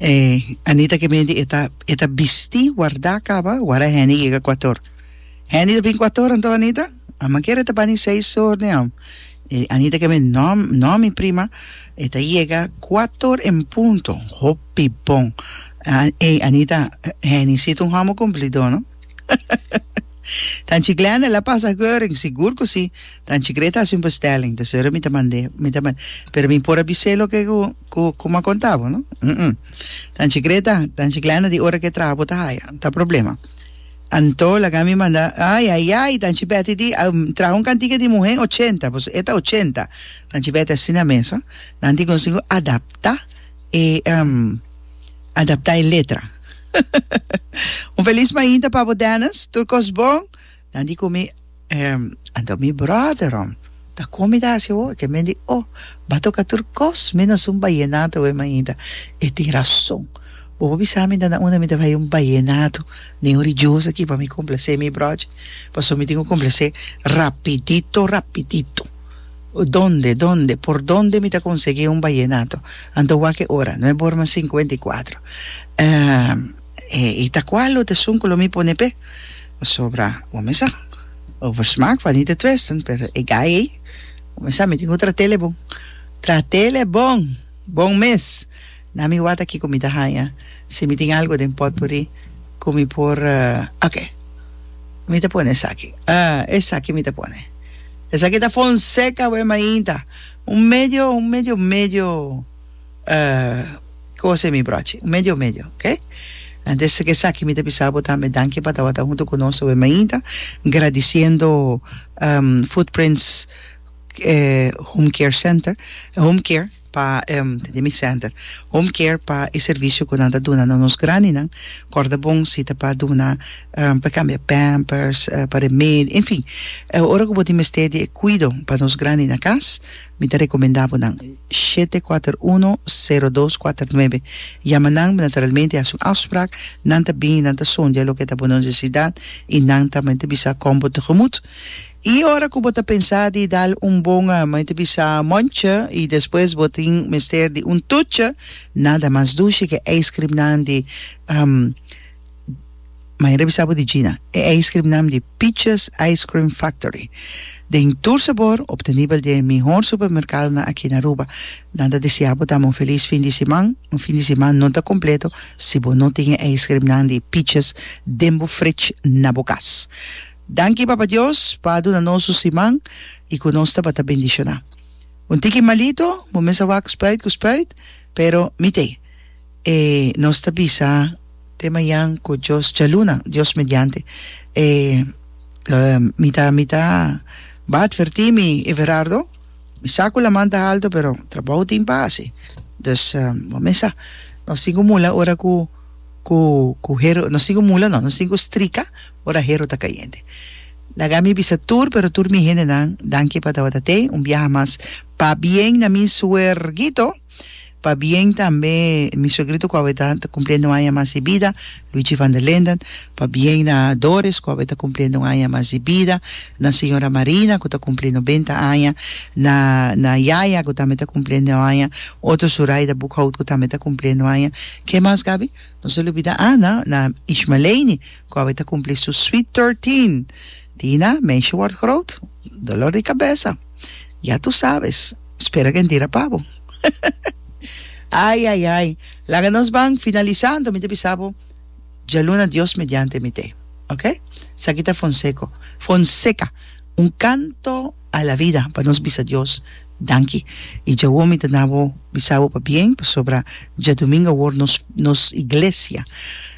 Eh, Anita ke mende e ta e ta bisti wardá kaba, wara Henny yega kuator. Henny ta bin kuator anto Anita? A manker e ta bani seis sor den am. E Anita ke mende, No, no mi prima, e ta yega kuator en punto, hopi bon. Ah, eh, Anita, Henny sito un hamo kumplidó no. Tanchi Glenda la pasa Goering, sigur cu si. Tanchi cre ta haci un bestelling, dus ora mi ta mand'e, mi ta mand'e. Pero mi por a bis'é loke cu, cu, cu mi a conta bo, no? Umm. Tanchi cre ta, Tanchi Glenda di ora cu e traha bo ta haya, ta problema. Anto laga mi manda, ay, ay, ay, Tanchi Betty di, a traha un cantica di muhé ochenta, pasobra e ta ochenta. Tanchi Betty asina mes, ho. Nan tin consigo adapta. E adapta e letra. Un felis mainta pa bo Dennis, tur kos bon, nan di ku mi, Anto mi brother om ta kon mi ta hasi ho? Ke men di oh ba toka tur kos menos un bayenato we mainta, e tin rason, bo por bisa mi dana unda mi ta bai un bayenato nen un rijoso aki pa mi komplasé mi brochi, paso mi tin ku komplasé rapidito rapidito. Donde, donde, por donde mi ta konsegí un bayenato? Anto wak e ora, no e bor mas sinkuenta i kuatro. E i ta kua lo ta esun ku lo mi pone p'e? Pasobra, bo mester sa, over smaak fal nit te twisten, pero e gai ei, bo mester sa, mi tin ku tra telebon. Tra telebon! Bon mes! Na mi wata kiko mi ta haña si mi tin algu den potpourri ku mi por ok mi ta pone esaki esaki mi ta pone esaki ta fonseca we mainta un medio un medio medio kos e mi brochi un medio medio ok anto es esaki mi ta bisa bo tambe danki pa tabata huntu ku nos we mainta gradisiendo footprints home care center home care pa tende mi center home care pa e servicio cu nan ta duna na nos grandinan corda bon si ta pa duna pa cambia pampers pa remedio enfin ora cu bo tin mester di e cuido pa nos grandi na cas mi ta recomenda bo nan shete cuater uno cero dos cuater nuebe yama nan naturalmente haci un afsprak nan ta bini nan ta sondia loke ta bo necesidad y nan tambe ta bisa con bo tegemut. I ora ku bo ta pensá di dal un bon mei ta bisa monchi i despues bo tin mester di un tuchi, nada mas dushi ku e ijskrimnan di Mayer a bisa bo di Gina, e ijskrimnan di Peaches Ice Cream Factory den tur sabor obtenibel di e mihor supermerkadonan aki na Aruba. Nada deseá bo dam un felis fin di siman, un fin di siman no ta kompleto si bo no tin e ijskrimnan di Peaches den bo fritj na bo kas. Danki Papa Dios pa a duna nos su siman y cu nos tabata bendiciona. Un tiki malito, bo mes a wak spuit cu spuit, pero mi t'e. E nos ta bisa. Te mayan cu Dios djaluna, Dios mediante. E lo mi ta mi ta ba adverti mi Everardo, mi sa cu laman ta alto pero trabou tin pa haci. Dus bo mes sa, nos tin cu mula ora cu cu cu hero, nos tin cu mula no, nos tin cu strika. Ora hero ta cayente. Laga mi bisa tur, pero tur mi hendenan, dankie pa tabata tey un biaha mas pa bien na mi suerguito, pa bien tambe mi suegrito cu awe ta ta cumpliendo un aña mas di bida, Luigi van der Linden, pa bien na Doris cu awe ta cumpliendo un aña mas di bida, na señora Marina cu ta cumpli noventa aña, na na yaya cu tambe ta cumpliendo un aña, otro Zuraida Boekhout cu tambe ta cumpliendo un aña, ke mas Gaby? No se lubida Ana, na Ishmaleini. Cu awe ta cumpli su sweet thirteen. Tina, Meisje word groot, dolor di cabeza. Ya tu sabes. Spera gentira pa bo. Ai, ai, ai. Laga nos ban finalisando. Mi ta bisa bo djaluna Dios mediante mi te. Ok? Saki ta Fonseco, Fonseca, un canto a la vida pa nos bisa Dios danki. Y djawo mi ta na bo bisa bo pa bien pasobra djadumingo awor nos nos iglesia.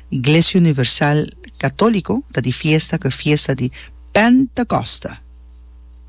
Iglesia Universal Católico ta di fiesta cu e fiesta di Pentecosta.